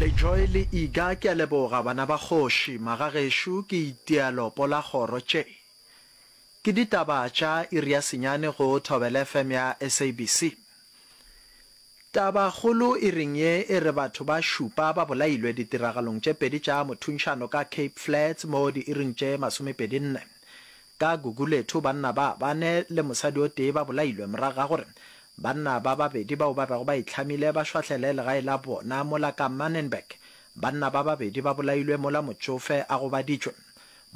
Lejoy le Iga ke a leboga bana ba kgoši, magagešo ke itia lopo la kgoro tše ke ditaba tša iri ya senyane go Thobela FM ya SABC. Taba kgolo iring ye e re batho ba šupa ba bolailwe ditiragalong tše pedi tša mothuntšhano ka Cape Flats mo diiring tše masomepedi nne Ka Gugulethu, banna ba bane le mosadi o tee ba bolailwe morago ga gore banna ba babedi bao ba bego ba itlhamile ba šwahlele legae la bona mola ka Manenberg. Banna ba babedi ba bolailwe mola motšofe a gobaditšwe.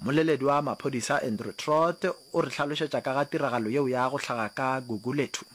Mmoleledi wa maphodisa Andrew Trott o re hlalošetša ka ga tiragalo yeo ya go hlaga ka Gugulethu.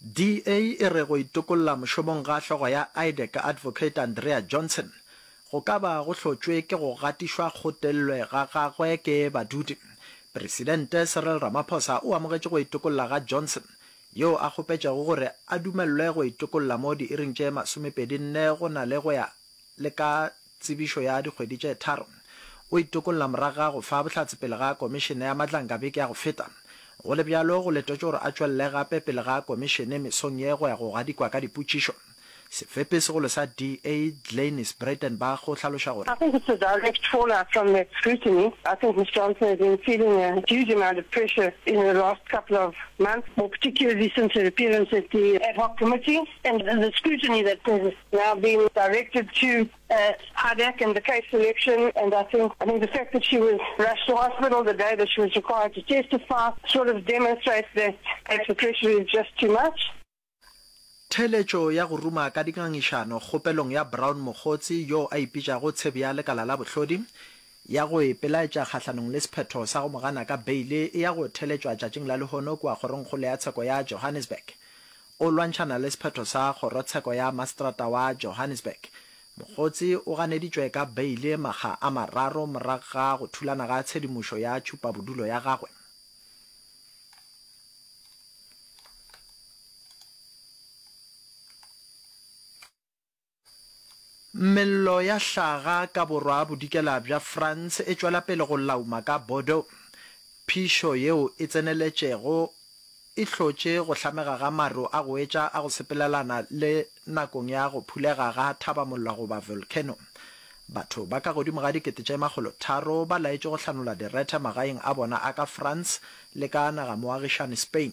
DA e re go itokolla mošomong ga hlogo ya IDEC Advocate Andrea Johnson go ka ba go hlotšwe ke go gatišwa kgotellwe ga gagwe ke badudi. Presidente Cyril Ramaphosa o amogetše go itokolla ga Johnson, yo a kgopetšego gore a dumelelwe go itokolla mo diiring tše masomepedi nne go na le go ya le ka tsebišo ya dikgwedi tše tharo o itokolla morago ga go fa bohlatse pele ga Komišene ya Matlankga beke ya go feta. Go le bjalo, go letetšwe gore a tšwelele gape pele ga Komišene mesong ye go ya go gadikwa ka dipotšišo. Sefepi segolo sa DA, Glenis Breitenbach o hlaloša gore. I think it's a direct fallout from that scrutiny. I think Ms Johnson has been feeling a huge amount of pressure in her last couple of months, more particularly since her appearance at the Ad Hoc Committee. And the scrutiny that has now been directed to uh, Hadek and the case selection, and I think I think the fact that she was rushed to hospital the day that she was required to testify sort of demonstrates that the pressure is just too much. Theletšo ya go ruma ka dingangišano kgopelong ya Brown Mokgotsi yo a ipitšago tshebi ya lekala la bohlodi ya go ipelaetša kgahlanong le sephetho sa go mo gana ka beile e ya go theletšwa tšatšing la lehono kua kgorongkgolo ya tsheko ya Johannesburg. O lwantšhana le sephetho sa kgorotsheko ya maseterata wa Johannesburg. Mogotsi o ganeditšwe ka beile makga a mararo morago ga go thulana ga tshedimošo ya tšhupabodulo ya gagwe. Mello ya hlaga ka borwa-bodikela bja France e tšwela pele go lauma ka Bordeaux. Phišo yeo e tseneletšego e hlotše go hlamega ga maru a go etša a go sepelelana le nakong ya go phulega ga thabamolla goba volcano. Batho ba ka godimo ga dikete tše makgolo tharo ba laetšwe go hlanola direthe magaeng a bona a ka France le ka nagamoagišani Spain.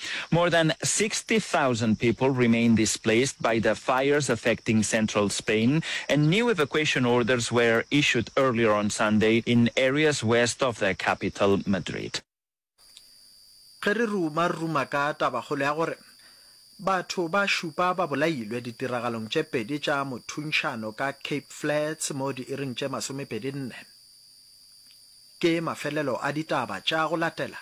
More than 60,000 people remain displaced by the fires affecting central Spain, and new evacuation orders were issued earlier on Sunday in areas west of the capital, Madrid. Ge re ruma-ruma ka tabakgolo ya gore batho ba šupa ba bolailwe ditiragalong tše pedi tša mothuntšhano ka Cape Flats mo diiring tše masomepedi-nne, ke mafelelo a ditaba tša go latela